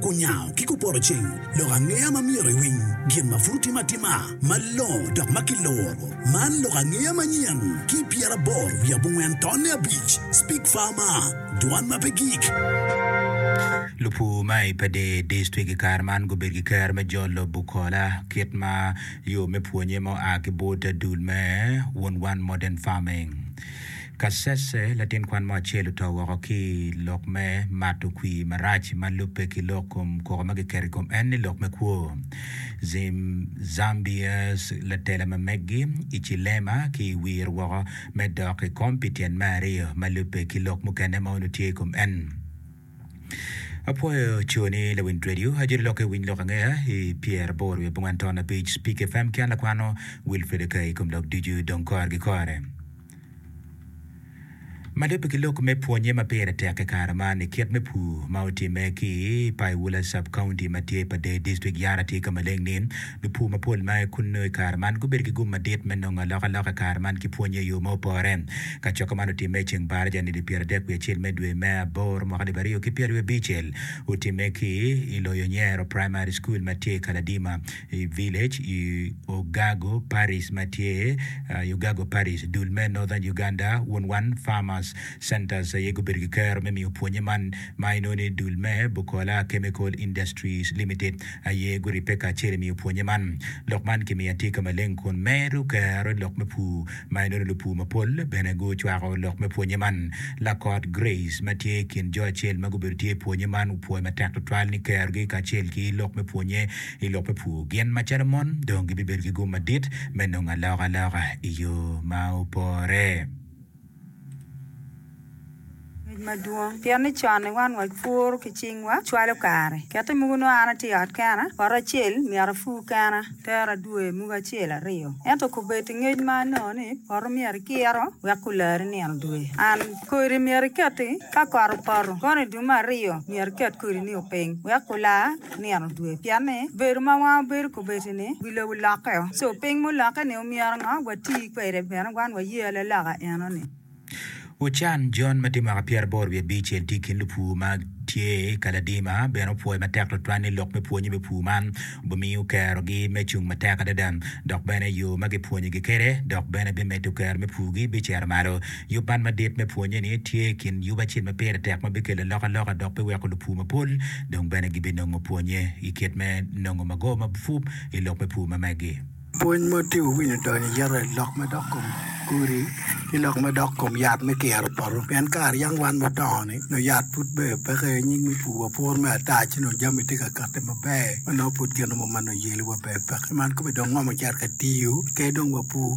Kunyango ki kuporoceng lok angeya ma myero iwiny gin ma pud otime atima malongo dok ma kiluro. Man lok angeya manyen ki pyeraboro wiye abongwen tonne abic, Speak Farmer, Dwan ma pe gik. Lupur ma i Pader District i kare man gubedo ki kero me jolo bukola kit ma yo me pwonye ma oa ki bot dul me Wun Wan Modern Farming. Kasese, latin kwan mo acel oto woko ki i lok me mato kwir marac ma lubbe ki lok kom koko ma kiketo i kom en ni lok me kwo. Zim Zambiers, latela ma meggi i Chilema ki i wir woko me dok i kom pi tyen me aryo ma lubbe ki lok mukene ma onongo tye i kom en. Apwoyo co ni lawiny radio ajoli lokke winy lok angeya i pyer aboro wiye bongwen ton abic Spik FM ki an lakwano Wilfred Akai ikom lok ducu dong kor gi kore. Ma lubbe ki lok me pwonnye ma pire tek i kare man i kit me pur ma otimme ki i Paiwula Sub-County ma tye pa Deyi District, Yara tye ka maleng ni lupur mapol ma aye kunnu i kare man gubedo ki gum madit me nongo alokaloka i kare man ki pwonnye i yo ma opore. Kacokka man otimme i ceng Baraja nili pyera dek wiye acel me dwe me aboro mwaka alip aryo ki pyera wiye abicel. Otimme ki i loyo Nyero Primary School ma tye i Kaladima i Village i Ogago Parish ma tye i Ogago Parish, dul me Northern Uganda Wunwan Farmers Centers aye gubedo ki kero me miyo pwonye man ma inongo ni dul me Bukola Chemical Industries Limited aye guribbe kacel i miyo pwonye man. Lok man kimiyo atika maleng kun medo kero lok me pur ma inongo ni lupur mapol bene gucwako lok me pwonye man. Lakot Grace ma tye i kin jo acel ma gubedo tye i pwonye man opwoyo matek tutwal ni kerogi kacel ki lok me pwonye I lok me pur, gin macalo mon dong gibibedo ki gum madit me nongo alokaloka i yo ma opore. Ngec madwong pien ni con-ni wan wapuro ki cingwa, cwalo kare. Kette muku nongo an atye i ot kena, poto acel myero apur kena, tero adwoyo muku acel aryo. Ento kobed i ngec man nongo ni poto myero ikiro wek kularri nino dwe. An, kodi myero iketi ka kot opoto, kono i dwe me aryo myero iket kodini piny wek kular. nino dwe pien ni bedo ma wan wabedo kobedi ni wi lobo lokke o so piny mulokke ni omyero ngo wati kwede bene wan waye ale loka eno ni. Wucan John ma tye mwaka pyera aboro wiye abic en tye i kin lupur ma tye i Kaladima bene opwoyo matek tutwal ni lok me pwonye me pur man obimiyo kero gi me cung matek adada dok bene yo ma gipwonyo gi kede dok bene bimeddo kero me pur gi bicito malo. Yub man madit me pwonye ni tye i kin yub acel ma pire tek ma bikelo alokaloka dok biweko lupur mapol dong bene gibinongo pwonye i kit me nongo mago mabup i lok me pur ma megi. Pwony ma tye wawiny odonyo i yero lok ma dok kom kodi ki lok ma dok kom yat me kiro poto pien kare yam wan mudongo ni nongo yat pud ber peke aye nyig me pur wa puro me ata ci nongo jami tye ka kati maber ma nongo pud gin mo ma nongo yeliwa ber peke man kobedong ngomo cito ka tiyo kadi dong wapur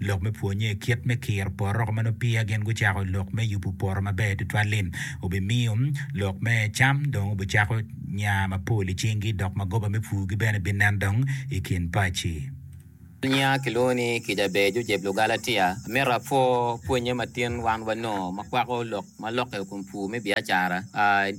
Lok me pwonnye kit me kiro poro ma nongo peya gin gucako lok me yubu poro maber tutwal-li. Wubimiyo lok me cam dong wubicako nya mapol i cingi dok magoba me pur-gi bene binen dong i kin paci. Nya kilwongo ni kica ber jujeb Lugalatia. Amito apwo pwonnye matin wan wanongo makwako lok ma lokke i kom pur me biacara,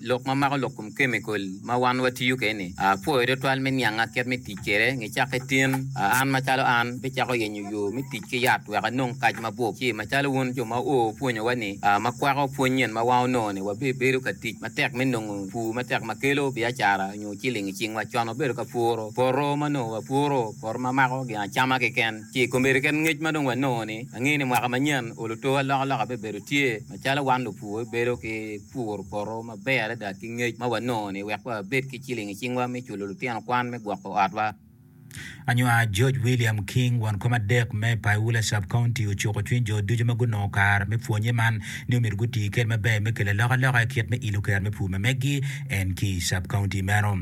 lok ma mako lok kom kemikol ma wan watiyo kwede-ni, pwoyo tutwal me nianga kit me tic kwede. Nge cakke tin, an macalo an, abicako yenyo yo me tic ki yat wek anong kac mabup, ci macalo wun jo ma oo opwonyowa ni, ma kwako pwony nyen ma wan onongo-ni, wabibedo ka tic matek me nongo pur matek ma kelo biacara nyo ciling i cingwa. Con wabedo ka puro poto ma onongo wapuro poto ma mako gin acama keken. Ci i komedi kit ngec ma dong wanongo-ni, angeyo ni mwaka manyen oluto alokaloka bibedo tye. Macalo wan lupur bibedo ki puro poto maber adada ki ngec ma wanongo-ni wek wabed ki ciling i cingwa me culo lutino kwan me gwoko otwa. Anywar George William King, won kom adek me Paiula Sub-County, ocuko cwiny jo ducu ma gunongo kare me pwonye man ni omyero guti kede maber me kelo alokaloka i kit me ilo kero me pur ma meggi en ki i Sub-County meno.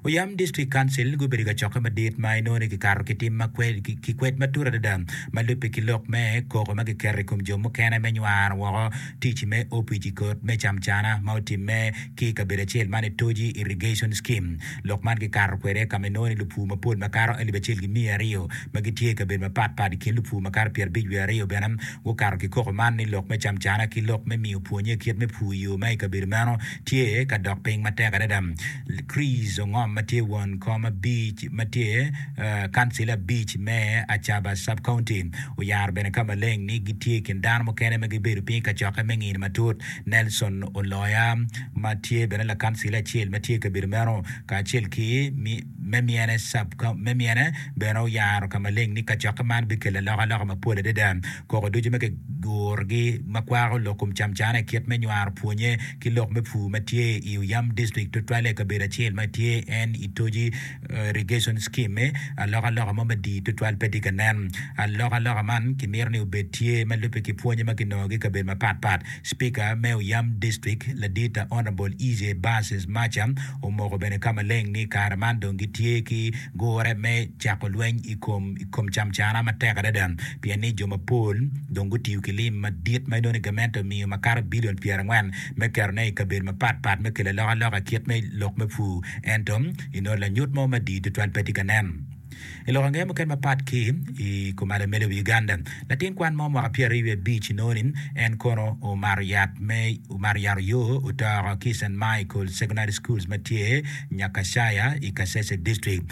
Oyam District Council gubedo ka cokke madit ma inongo ni kikato ki tim ma ki kwed matut adada ma lubbe ki lok me koko ma kiketo i kom jo mukene me nywaro woko tic me opic i kot me camcana ma otimme ki i kabedo acel man i Toji Irrigation Scheme. Lok man kikato kwede ka ma inongo ni lupur mapol makato alip acel ki miya aryo ma gitye i kabedo mapat pat i kin lupur makato pyerabic wiye aryo bene gukato ki koko man ni lok me camcana ki lok me miyo pwonye kit me pur i yo ma i kabedo meno tye ka dok piny matek adada. Chris Ongom ma tye won kom abic ma tye kancil abic me Acaba Sub-County oyaro bene ka maleng ni gitye i kin dano mukene ma gibedo piny i kacokke me ngino matut. Nelson Oloya ma tye bene lakancil acel ma tye i kabedo meno kacel ki me myene bene oyaro ka maleng ni kacokke man bikelo alokaloka mapol adada. Koko ducu ma kigurogi ma kwako lok kom camcane i kit me nywaro pwonye ki lok me pur ma tye i Oyam District tutwalle i kabedo acel ma tye en i toji irrigation scheme-mi, alokaloka mo madii tutwal pe tye ka nen. Alokaloka man kimito ni obed tye ma lubbe ki pwonye ma kinongogi i kabedo mapatpat. Spika me Oyam District, Ladita Honourable Ije Basis Macha omoko bene ka maleng ni kare man dong gitye ki gure me cako lweny i kom i kom camcana matek adada pien ni jo mapol dong gutiyo ki lim madit ma inongo ni gamente omiyo makato bilion pyerangwen me ketone i kabedo mapat pat me kelo alokaloka i kit me lok me pur. Ento, inongo lanyut mo madii tutwal pe tye ka nen. I lok ange mukene mapat ki i kom alamelo i wi Uganda, latin kwan mo mwaka pyeraryo wiye abic inongo ni en kono omato yat me omato yat oyo otoko ki i St. Michael Secondary Schools ma tye Nyakashaya i Kasese District.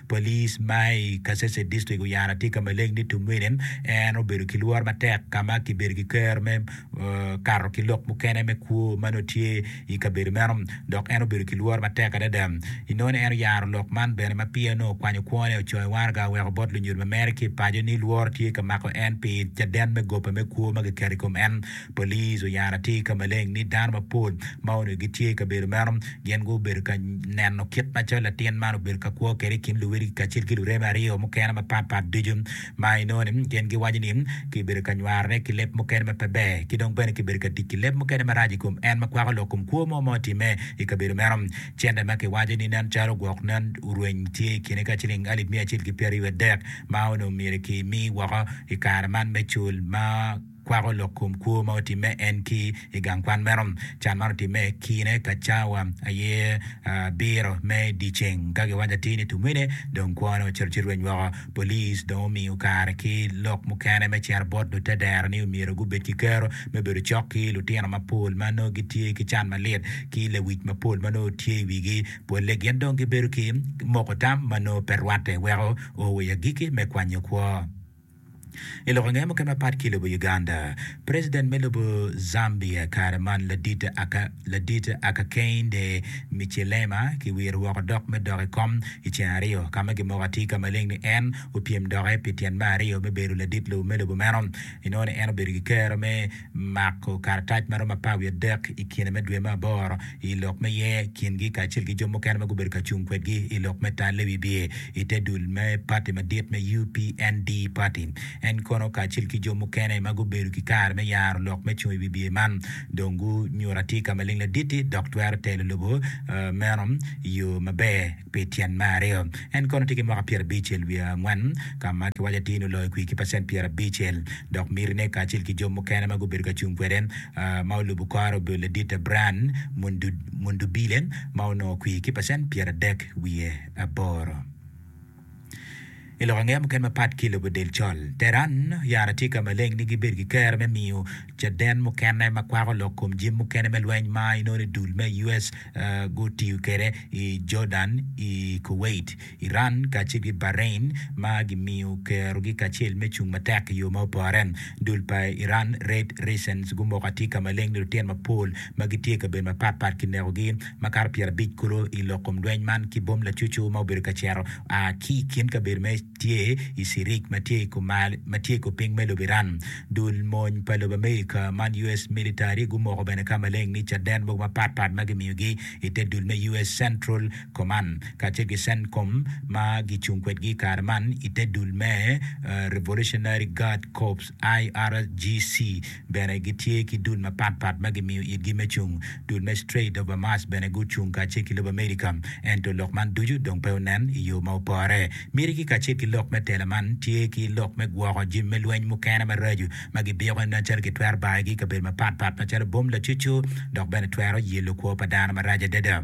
Polis ma i Kasese District oyaro atika maleg ni Tumwine en obedo ki lworo matek ka ma kibedo ki kero me kato ki lok mukene me kwo ma nongo tye i kabedo meno dok en obedo ki lworo matek adada. Inoni en oyaro lok man bene ma pire nongo okwanyo kwone ocung i waraga oweko bot lunyodi ma mere ki i paco ni lworo tye ka mako en pi caden me gope me kwo ma kiketo i kom en. Police oyaro atir ka maleng ni dano mapol ma onongo gitye i kabedo meno gin gubedo ka neno kit macalo latin man obedo ka kwo kwede i kin luwotgi kacel ki lureme aryo mukene mapat pat ducu ma inongo ni gin giwaco ni kibedo ka nywarone ki leb mukene ma pe ber ki dong bene kibedo ka tic ki leb mukene marac i kom en ma kwako lok kom kwo mo ma otimme i kabedo meno. Cente ma kiwaco ni nen calo gwok nen orweny tye i kine ka ciling alip miya acel ki pyeraryo adek ma onongo myero kimi woko i kare man me cul ma kwako lok kom kwo ma otimme en ki i gang kwan meno. Can man otimme kine ka cawa aye abiro me dyeceng. Ka giwaco atir ni tumene dong kwone ocito ci rweny woko. Police dong omiyo kare ki lok mukene me cito bot lutedero ni omyero gubed ki kero me bedo cok ki lutino mapol ma nongo gitye ki can malit ki lewic mapol ma nongo tye i wigi. Pole gin dong gibedo ki moko tam ma nongo pe rwatte weko o wa i agikki me kwanyo kwo. I lok ange mukene mapat ki lobo Uganda, President me lobo Zambia kare man Ladit Akakeinde Michilema ki wiro woko dok me dok i kom i ceng aryo ka ma gimoko atir ka maleng ni en opyem doke pi tyen me aryo me bedo ladit lobo me lobo meno. Inongo ni en obedo ki kero me Mako karatac ma romo apar wiye adek i kine me dwe me aboro i lok me ye kingi kacel ki jo mukene ma gubedo ka cung kwedgi i lok me tal Lewi biye i te dul me pati madit me UPND party. En kono kacel ki jo mukene ma gubedo ki kare me yaro lok me cung i wi biye man dong gunyuto atika maleng laditi dok twero telo lobo meno i yo maber. Pi tyen me aryo, en kono tye ki mwaka pyera abicel wiye angwen, ka ma kiwaco atir ni oloyo kwir ki pacent pyera abicel. Dok mitine kacel ki jo mukene ma gubedo ka cung kwede ma olubo kore obedo ladite Brian Mundubile ma onongo kwir ki pacent pyera adek wiye aboro. I lok angeya mukene mapat ki i lobo del col, Tehran oyaro atika maleng ni gibed ki kero me miyo caden mukene ma kwako lok kom jim mukene me lweny ma inongo ni dul me US gutiyo kwede i Jordan, i Kuwait, Iran kacel ki Bahrain ma gimiyo kerogi kacel me cung matek i yo ma opore. Dul pa Iran Red Resistance gumoko atika maleng ni lutino mapol ma gitye i kabedo mapatpat kinekogi. Makato pyerabic kulu i lok kom lweny man ki bom lacucu ma obedo ka cito a ki i kin kabedo ma tye i Sirik ma tye i kor piny me lobo Iran. Dul mony pa lobo Amerika man US Military gumoko bene ka maleng ni caden mogo mapat pat ma gimiyogi i te dul me US Central Command kacel ki Centcom ma gicung kwedgi i kare man i te dul me Revolutionary Guard Corps, IRGC, bene gitye ki dul mapat pat ma gimiyo itgi me cung. Dul me Strait of Bermas bene gucung kacel ki lobo Amerika, ento lok man ducu dong pe onen i yo ma opore. Mitigi kacel ki lok me tela man tye ki lok me gwoko jami me lweny mukene maraco ma gibiko nen calo gitwero bayogi i kabedo mapat pat macalo bom lacucu dok bene twero yelo kwo pa dano marac adada.